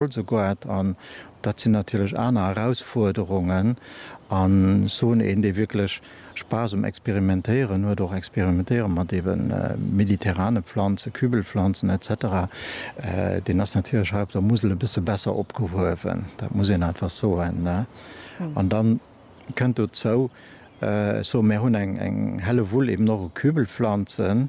Oldesloe-Goart, an dat sinn natierlech aner Erausfuerderungen, a soen, een dee wierklech Spaass um Experimentéieren huet, och experimentéiere mat ebe mediterrane Planzen, Kübelpflanzen etc, deen ass natierlech hei op der Musel e bësse besser opgehuewen, dat muss een einfach soen. An da kënnt dozou, ech soe mär hunn eng Hellewull eben och u Kübelpflanzen,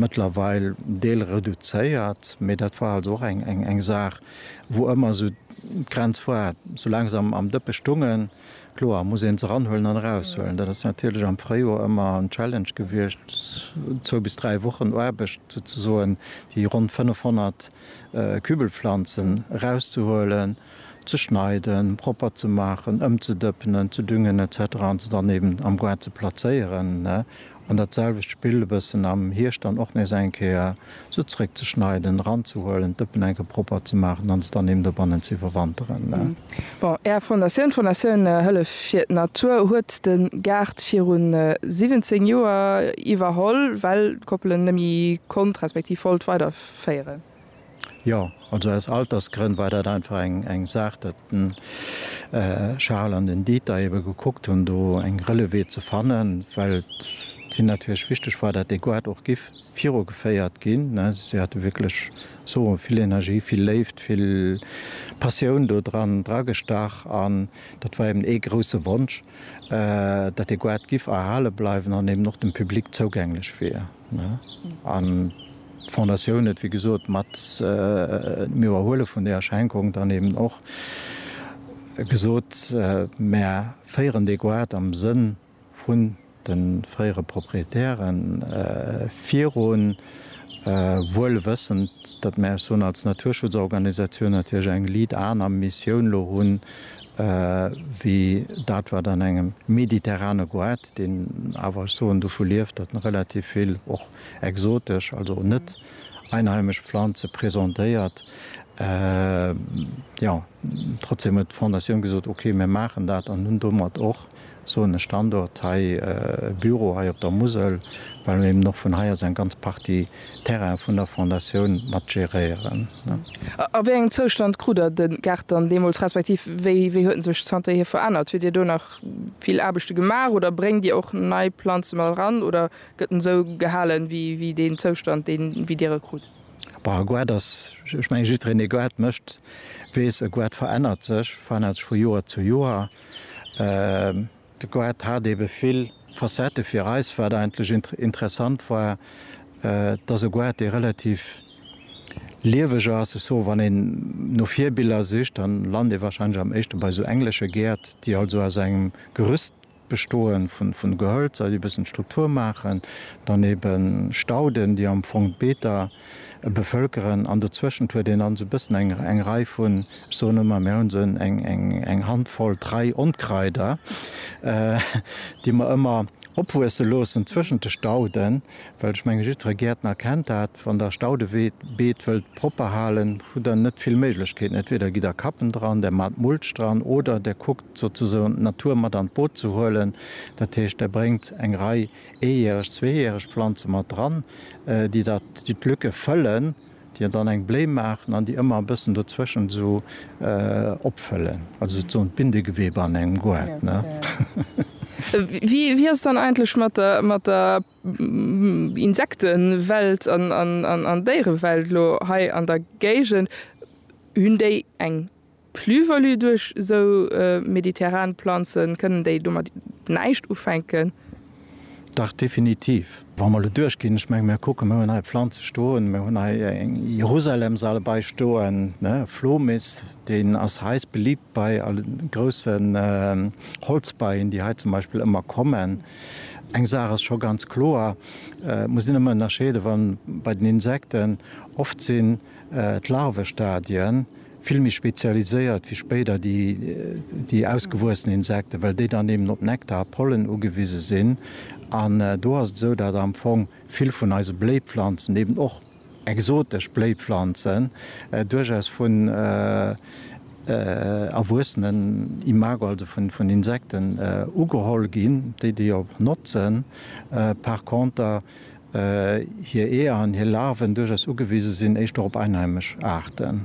mëttlerweil Deel reduzéiert, mee dat war also och eng Saach, wou ëmmer esou d'Grenz war, soulaang se am Dëppe stungen, kloer, muss een se eranhuelen an eraushuelen. Dat ass natierlech am Fréijoer ëmmer en Challenge gewiescht, zwou bis dräi Wochen Aarbecht, souzesoen déi ronn 500 Kübelpflanzen erauszehuelen, ze schneiden, propper ze maachen, ëmzedëppenen, ze düngen, etc. An se dann eben am Goart ze plazéieren. An dat selwecht Spill e bëssen am Hierscht dann och nees eng Kéier se zréckzeschneiden, eranzehuelen, d'Dëppen eng Kéier propper ze maachen an se dann eben dobannen ze iwwerwanteren. Bon, Är Fondatioun, d'Fondatioun Hëllef fir d'Natur, huet de Gaart viru 17 Joer iwwerholl, well d'Koppel en nemme konnt, respektiv wollt, weiderféieren. Jo, also aus Altersgrënn war dat einfach eng Saach, datt den Charel an den Dieter ebe gekuckt hunn, do eng Relevée ze fannen, well et hinne natierlech wichteg war, datt dee Goart och giff virugeféiert ginn. Ne, si hate wierklech, ech soe mol, vill Energie, vill Léift, vill Passioun do dran dragestach. An dat war eben ee grouse Wonsch, datt dee Goart giff erhale bleiwen an eben och dem Public zougänglech wier. An d'Fondatioun huet, wéi gesot, mat dem Iwwerhuele vun deeër Schenkung dann eben och gesot, Mär féieren dee Goart am Sënn vun de fréiere Proprietäre virun, wuel wëssend, datt mär, ech soen als Naturschutzorganisatioun, natierlech eng Lead-Aarm-Missioun elo hunn, wéi dat wat an engem mediterrane Goett, deen awer ech soen dovu lieft, datt en relativ vill och exotesch, also net einheimesch Pflanze presentéiert, jo, trotzdem huet d'Fondatioun gesot, ok, mir maachen dat an hunn domat och soen e Standort hei, e Büro hei op der Musel, well mir eben och vun hei aus eng ganz Partie Terraine vun der Fondatioun mat geréieren. A wéi engem Zoustand krut Der de Gaart dann deemools, respektiv wéi huet en sech zanterhier verännert? Huet Dir do nach vill Aarbechte gemaach oder bréngt Dir och nei Planze mat eran oder gëtt en esou gehalen, wéi deen Zoustand, deen, wéi Dir e krut? Bah, e Gaart ass, ech mengen, jiddwereen, dee Gaart mécht, weess, e Gaart verännert sech, verännert sech vu Joer zu Joer. De Goethe hat ebe vill Facettë. Fir eis war et eigentlech interessant war, dass e Goethe, dee relativ lieweg ass, ech soe wann een no Virbiller sicht, da lant ee wahrscheinlech am éischte bei esou englesche Gäert, déi halt esou aus engem Gerüst bestoen, vun Gehölzer, déi e bëssen d'Struktur maachen, dann ebe Stauden, déi am Fong d'Beeter, bevölkeren an dozweschend huet een dann sou bëssen eng eng Rei vun, ech soen ëmmer, mir hunn sou en eng eng eng Handvoll, Trei Onkraider, déi mer ëmmer opwuesse loossen zwëschent de Stauden, well ech menge jiddfere Gäertner kennt dat, wann der Staudeweed beet wëllt propper halen, hutt der net vill Méiglechkeeten, entweder gitt der Kappen dran, där mat Mulch dran oder där kuckt souzesoen d'Natur mat an d'Boot ze huelen, dat heescht där bréngt eng Rei. Eejäreg, zweejäreg Planze mat dran, déi dat, déi d'Lücke fëllen, déi dann eng Bléi maachen an déi ëmmer e bëssen dozwëschent esou opfëllen, also souzesoen d'Bindegewebe an engem Goart. Wéi ass et dann eigentlech mat der Insektewelt an Déierewelt elo hei an der Géigend? Hunn déi eng Plus-value duerch esou mediterran Planzen, kënnen déi domat näischt ufänken? Dach definitiv. Wa mer elo duerchginn, ech menge mir kucken, mir hunn hei Planze stoen, mir hunn hei eng Jerusalem-Sale bei stoen, e Flomis, deen ass heiss beliibt bei grousse Holzbeien, déi hei zum Beispill ëmmer kommen. Eng Saach ass scho ganz kloer, Et muss een ëmmer ënnerscheede wa bei den Insekten, oft sinn d'Larvestadien, vill méi spezialiséiert wéi spéider déi ausgewuessen Insekten, well déi dann eben op Nektar a Pollen ugewise sinn. An do ass et esou, datt am Fong vill vun eise Bléipflanzen, eben och exotesch Bléipflanzen, duerchaus vun erwuessenen Imago, also vun Insekten ugeholl ginn, déi déi och notzen. Par conter hir Eeër an hir Larven duerchaus ugewise sinn éischter op einheimesch Aarten.